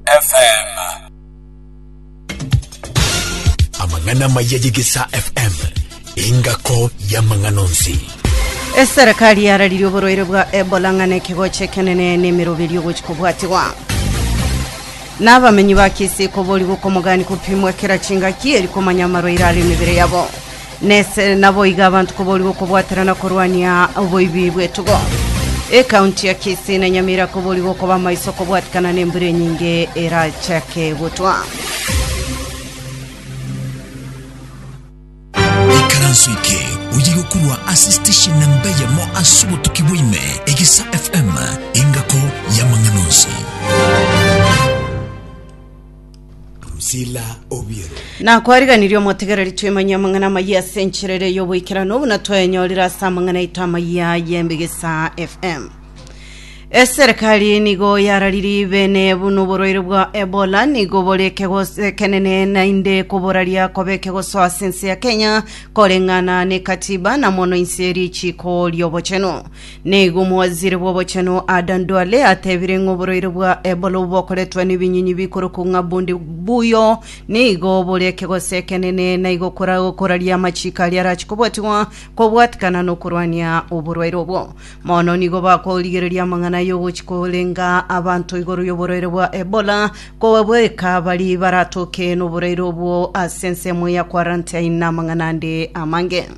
FM. Amang'ana amaya y'Egesaa FM, engako y'amang'ana onsi. Eserekari yararirie oborwaire bwa Ebola ng'a nekegocho ekenene na emeroberi ogochi kobwatigwa. Na abamenyi ba Kisii koborigwa okomogani kopimwa kera chingaki eri komanya amarwaire are emebere yabo. Nese naboigo abanto koborigwa okobwatera na korwania oboibi bw'etugo. Ekaunti ya Kisii na Nyamira koborigwa okoba amaiso kobwatikana nembura enyinge erachake gotwa. ikaranso eke oyirwe korwa ase station na mbe yamo ase obotuki bwaime egisa fm engako y'amang'ana onsi Drusilla Obiero. Na kwariganirie omotegereri twemanyie amang'ana amayia ase enchera ere y'oboikeranu buna twayanyorire ase amang'ana aito amayia y'embegesa FM. Eserikali nigo yararirie bene buna oborwaire bwa Ebola nigo bore ekegoso ekenene naende koboraria kobe ekegoso ase ense ya Kenya koreng'ana n'ekatiba na mono inse ri'echiko ri'obochenu. Nigo omowaziri bw'obochenu Adan Duale atebire ng'a oborwaire bwa Ebola obokoretwe nebinyinyi bikorokwa ng'a bundi buuyo nigo bore ekegoso ekenene na igo kora- koraria amachiko aria arachie kobwatigwa kobwatikana nokorwania oborwaire obwo. Mono nigo bakorigereria amang'ana y'ogochia korenga abanto igoro y'oborwaire bwa Ebola kobabweka baria baratoke noborwaire obwo ase ensemo ya quarantine na amang'ana ande amange.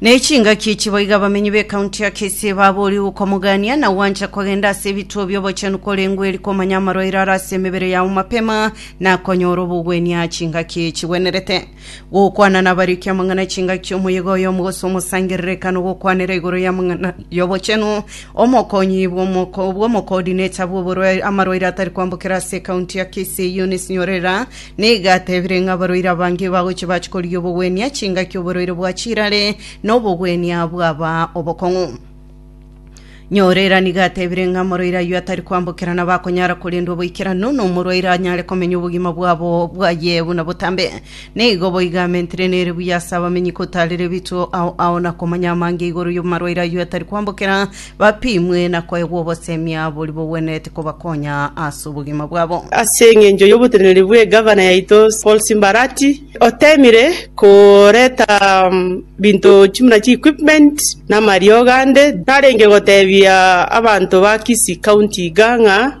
Ne chingaki echi boigo abamenyi b'ekaunti ya Kisii baboorire gokomogania na gwancha kogenda ase ebituo bi'obochenu korengwa eri komanya amarwaire are ase emebere yao mapema na konyora obogwenia aa chingaki echi chigwenerete. Gokwana nabarikia amang'ana chingaki omoyega oyomo gose omosangerera ekana ogokwanera igoro y'amang'ana y'obochenu omokonyi bw'omo bw'omokoodineta bw'oborwaire amarwaire atari kwambokera ase ekaunti ya Kisii Eunice Nyorera Nigo atebire ng'a abarwaire abange bagochia bachia korigia obogwenia chingaki oborwaire bwa chirare na obogwenia bwaba obokong'u. Nyorera nigo atebire ng'a omorwaire ayio atari kwambokera nabo akonyara korendwa boikeranu, na omorwaire anyare komenya obogima bwabo bwaye buna botambe. Nigo boigo amentire nere buya ase abamenyi kotaarera ebituo ao ao na komanya amange igoro y'amarwaire ayio atari kwambokera, Bapimwe na koegwa obosemi boria bogwenerete kobakonya ase obogima bwabo. Ase engencho y'oboteneneri bw'egavana yaito Paul Simbarati, oteemire koreta binto chimuna chi equipment na amariogo ande, tarenge goteebia abanto ba Kisii County iga ng'a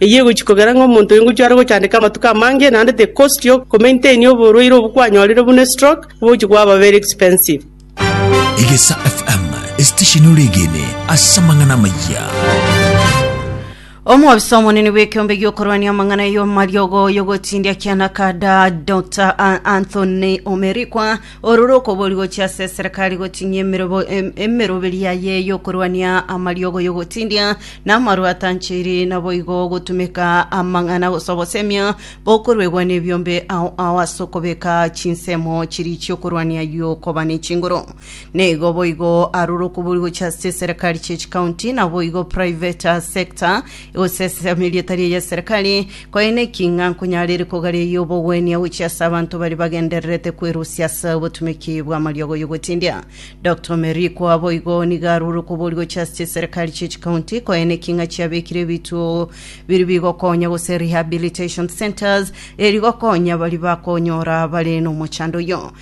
Eyio egochia kogera ng'a omonto oyo ngochia are gochandeka amatuko amange, naende tekostogia komaintainia oborwaire obwo kwanyorire buna estroke, obogochia kwaba very expensive. Egesa FM, esitesheni oregene ase amang'ana amaya. Omwobisa omonene bw'ekeombe gi'okorwania amang'ana y'omariogo y'ogotindia kiana kada Dr. A- Anthony Omerikwa Oro rokobori gochia ase eserekari gotinyia emerobo- em- emeroberi yaye y'okorwania amariogo y'ogotindia, na amarwa atanchiri, naboigo gotumeka amang'ana gose obosemia bokoruegwa nebiombe ao ao ase okobeka chinsemo chiria chi'okorwania y'okoba nechinguru. Nigo boigo aro rokobori gochia ase eserekari chie chikaunti, naboigo private sector, Gosesa erieta ria y'eserekari kwaina ki ng'a nkonyarere kogareyia obogwenia gochia ase abanto baria bagendererete kwerusia ase obotumeki bw'amariogo y'ogotindia. Doctor Omeri kwabo igo nigo arure okobori gochia ase chiserekari chie chikaunti kwaina ki ng'a chiabekire ebituo biri bigokonya gose rehabilitation centres eri gokonya baria bakonyora bare nomochando oyio.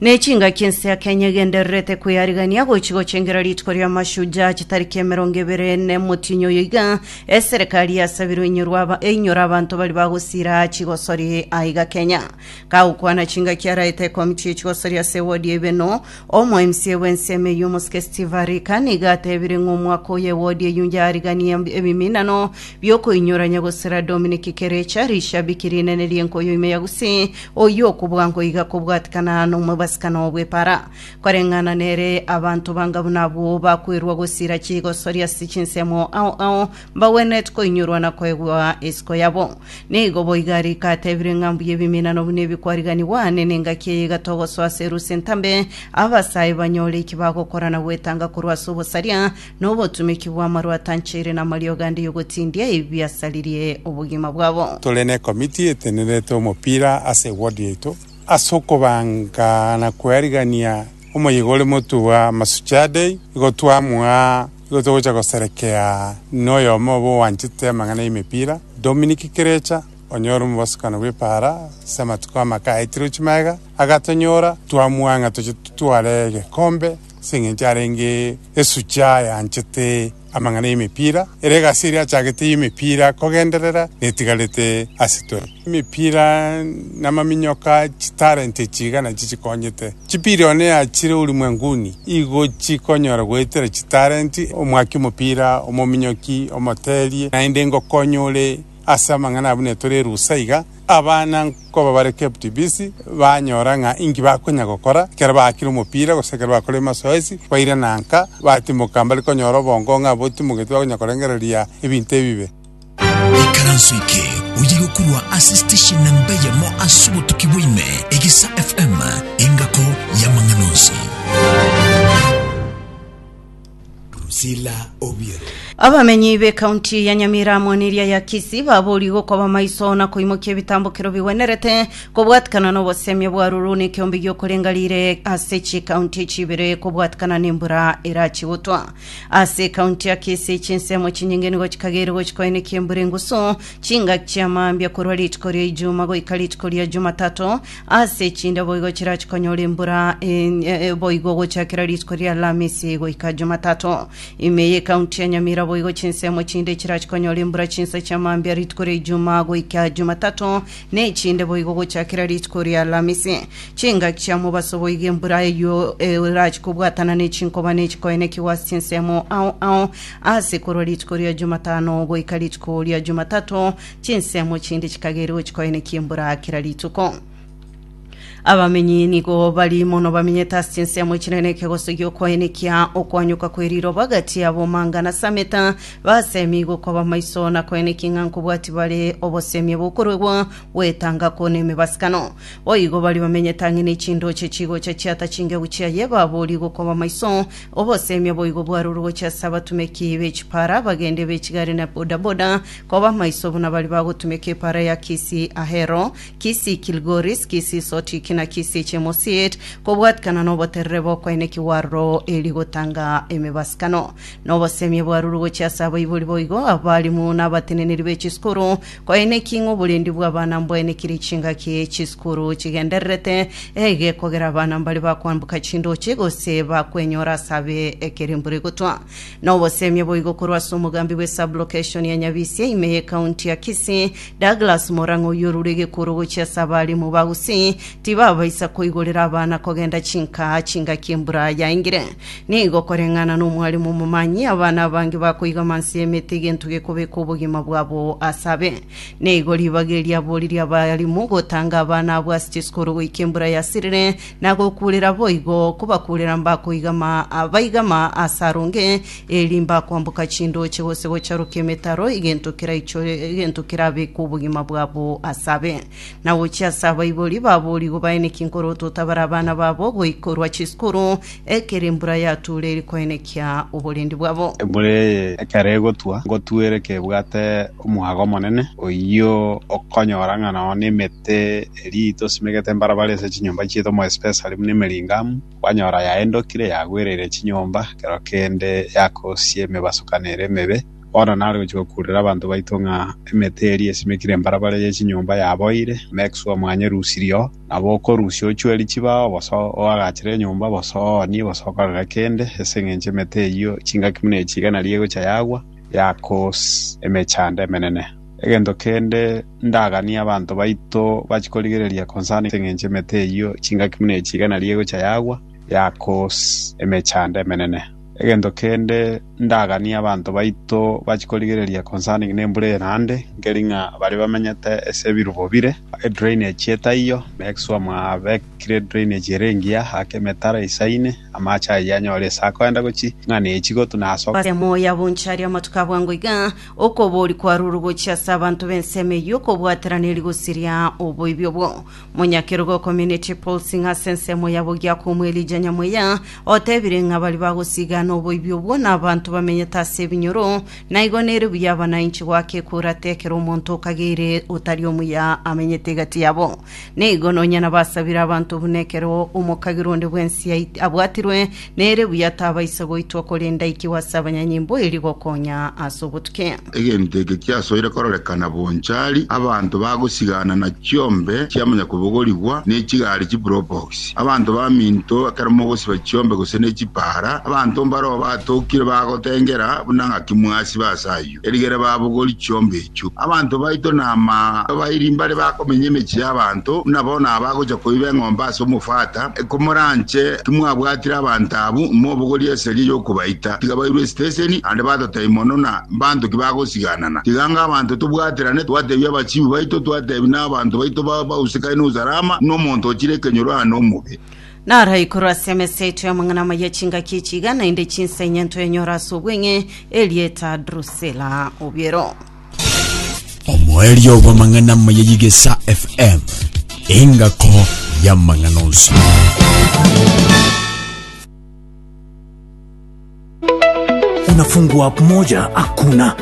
Ne chingaki ense ya Kenya egendererete kweyarigania gochi gochengera rituko ria Mashujaa chitariki emerongo ebere nemotinyo oyo iga eserekari yasabirwe inyorwa aba- einyora abanto bari bagosira chigosori aiga Kenya. Kagokwana chingaki araete ekomiti yechigosori ase ewodi ya Ibeno, omo MCA bw'ensemo eyio omosike Steve Arika nigo atebire ng'a omwaka oyo ewodi eyio yarigania ebiminano biokoinyorania gosira Dominic Kerecha, rishabiki rinene ri'enkoyo ime ya Gusii, Oyio okobua nkoiga kobwatikana nomobasicana o bwepara, koreng'ana nere abanto banga buna abwo bakwerwa gosira chigosoria ase chinsemo ao ao, mbagwenereti koinyorwa na koegwa isiko yabo. Nigo boiga rika atebire ng'a mbuya ebiminano buna ebi kwariganigwa, ane nengaki eye igatogosoa ase erusia entambe, abasae banyore eki bagokora na gwetanga korwa ase obosaria, nobotumeki bw'amarwa atanchaire namariogo ande y'ogotindia ebiasaririe obogima bwabo. Tore nekomiti etenerete omopira ase eward yaito ase okobanga na koerigania omoyega ore motwe bwa Masuchaa Day. Igo twamwaa igo togocha goserekea noyomo obo oanchete amang'ana y'emepira Dominic Kirecha onye ore omobosokano bw'Epara ase amatuko amake aetire Uchimaega agatonyora twamwaa ng'a toche totware egekombe Ase engencho arenge esucha eanchete amang'ana y'emepira, ere egasi eria achagete y'emepira kogenderera netigarete ase twe. Emepira namaminyoka chitalent echi iga nachio chikonyete. Chipirioni eachire ulimwenguni igo chikonyora goetera chitalent omwaki omopira, omominyoki, omoteerie, naende ngokonye ore ase amang'ana abwo netore erusa iga. Abana nkoba bare KPTBC banyora ng'a inki bakonya gokora ekero baakire omopira gose ekero bakorire emasoesi, bairana nka, batimoka mbari konyora obongo ng'a botimogeti bakonya korengereria ebinto ebibe. Ikaranso eke oye gokurwa ase station namba eyemo ase obotuki bwa ime, Egisa FM, engako y'amang'ana onsi. Priscilla Obiero. Abamenyi b'ekaunti ya Nyamira amo neria ya Kisii baboorigwe okoba maiso na koimokia ebitambokero bigwenerete kobwatikana n'obosemi obwarurwu nekeombe gi'okorenga riire ase chikaunti echi ibere kobwatikana nembura erachi gotwa. Ase ekaunti ya Kisii chinsemo chinyinge nigo chikagere gochika oenekia embura engusu chingaki chi'amambia korwa rituko ria Ijuma goika rituko ria Jumatato Ase chinde boigo chirachi konyora embura enye boigo gochakera rituko ria Alamisi goika Jumatato. Ime y'ekaunti ya Nyamira boigo chinsemo chinde chirachi konyora embura chinsa chia mambia rituko ria Ijumaa goika Jumatato, na echinde boigo gochakera rituko ria Alamisi. Chingaki chia mobaso boigo embura eyio erachi kobwatana ne chinkoba ne chikoenekigwa ase chinsemo ao ao ase korwa rituko ria Jumatano goika rituko ria Jumatato, Chinsemo chinde chikageria gochia koenekia embura kera rituko. Abamenyi nigo bari mono bamenyete ase chinsemo chinene ekegosogia okoenekia okoanyoka kwe riroba gati yabo manga na sameta basemi gokoba maiso na koenekia ng'a nkobwati bare obosemia bokoruegwa gwetanga kwo nemebasikano. Boigo bari bamenyete ang'e ne chindoche chigocha chiata chingegu chiaye baborie gokoba maiso obosemia boigo bwarurwe gochia ase abatumeki be chipara, abagende be chigari na bodaboda Koba maiso buna baria bagotumeka epaara ya Kisi-Ahero, Kisi-Kilgoris, Kisi-Sotiki, na Kisi-Chemosit, kobwatikana noboterere bokwaina ekiwaaruro erio gotanga emebasikano. Na obosemi ebwarurwe gochia ase abaibori boigo, abarimu, na abateneneri be chisukuru, kwaina eki ng'a oborendi bw'abana mbwainekire chingaki chisukuru chigendererete, egekogera abana mbaria bakoamboka chindoche, gose bakwenyora ase abe ekero embura egotwa. Noboseemia boigo korwa ase omogambi bwe sub-location ya Nyabisie ime ye county ya Kisii, Douglas Morang'a oyio orure egekuro gochia ase abalimu ba Gusii tibabaisa koigorera abana kogenda chinkaa chingaki embura yaingire. Nigo koreng'ana nomwalimu omomanyi, abana abange bakoiga amanse y'emete egento gekobeka obogima bwabo ase abe. Nigo ribaga eria aboririe abalimu gotanga abana abwo ase chisukuru goika embura yasirire, na gokuurera boigo, kobakuurera mbakoigama, baigama aase aronge, eeri mbakoamboka chindooche gose gocharokia emetaro, egento keraichore, egento kerabeke obogima bwabo ase abe. Na gochia ase abaibori baboria igo baeneki nkorotota bare abana babo goikorwa chisukuru, ekero embura yatuure eri koenekia oborendi bwabo. Embura eye ekero egotwa, ngotuere kebwate omwaga omonene, oyio okonyora ng'a nao nemetwe. Ase erii tosimegete mbarabara ase chinyomba chieto more especially buna Emeringhamu kwanyora yaendokire yagwereire chinyomba ekero kende yakosia emebasukano ere emebe bono nare gochia gokurera abanto baito ng'a emete eria esimekire mbarabara ye chinyomba yaboire make sure mwanyerusirie oo nabo okorusia ochueri chibao bosa oagachere enyomba bosa oonie bosa okorere kende ase eng'encho emete eyio chingaki buna echi iga naria egochia yagwa yako emechando emenene. Egento kende ndaganie abanto baito bachie korigereria concerning engencho emete eyio chingaki buna echi igana eria egocha yagwa yakoos emechando emenene. Egento kende ndaganie abanto baito bachie korigereria concerning nembura eye naende nkeri ng'a baria bamenyete ase ebirubo bire edrainage etaiyo make sure mwabekire edrainage ere engiya ake emetaro eisaine amache ayio anyore ase akoenda gochia ing'ana echi gotuna ase Ase emoyo ya bonchari amatuko abwango iga. Okobori kwarure gochia ase abanto b'ensemo eyio kobwaterana eri gosiria oboibi obwo. Monyakerogo o Community Policing ase ensemo ya Bogiakomu Elijah Nyamuya otebire ng'a baria bagosiigana oboibi obwo nabanto bamenyete ase ebinyoro naigo nere buya abanainchi goaka ekura tekero omonto okageire otari omuya amenyete egati yabo. Nigo nonya nabasabire abanto buna ekero omokagera onde bw'ense ait- abwatirwe, nere buya tabaisa goitwa, korende aikigwe ase abanyanyimbo erio gokonya ase obotuki. Egento eke kiasoire kororekana bonchari, abanto bagosigana na chiombe chia monyakobogorigwa ne chigari chipropox, abanto baminto ekero mogosiba chiombe gose ne chipaara, abanto mbareo batokire bagotengera buna ng'aki mwasiba ase ayio. Erigere babogori chiombe echio. Abanto baito nama abairi mbare bakomenya emechie y'abanto, buna bono abagocha koiba eng'ombe ase omofata. Komoranche timwabwatire abanto abwo, mobogorie eseria y'okobaita. Tiga bairwe esiteseni, naende batotai mono na mbanto ki bagosiganana. Tiga anga abanto tobwaterane, twatebia abachibi baito, twatebia na abanto baito bausekane n'Usalama, buna omonto ochire ekenyoro aa nomobe. Naro igoro ase emesa yaito y'amang'ana amaya chingaki echi iga naende chinsa inye ntoenyore ase obweng'e erieta Drusila obiero. Omoerio bw'amang'ana amaya y'Igesa FM, engako y'amang'ana onsi. Unafungua app moja hakuna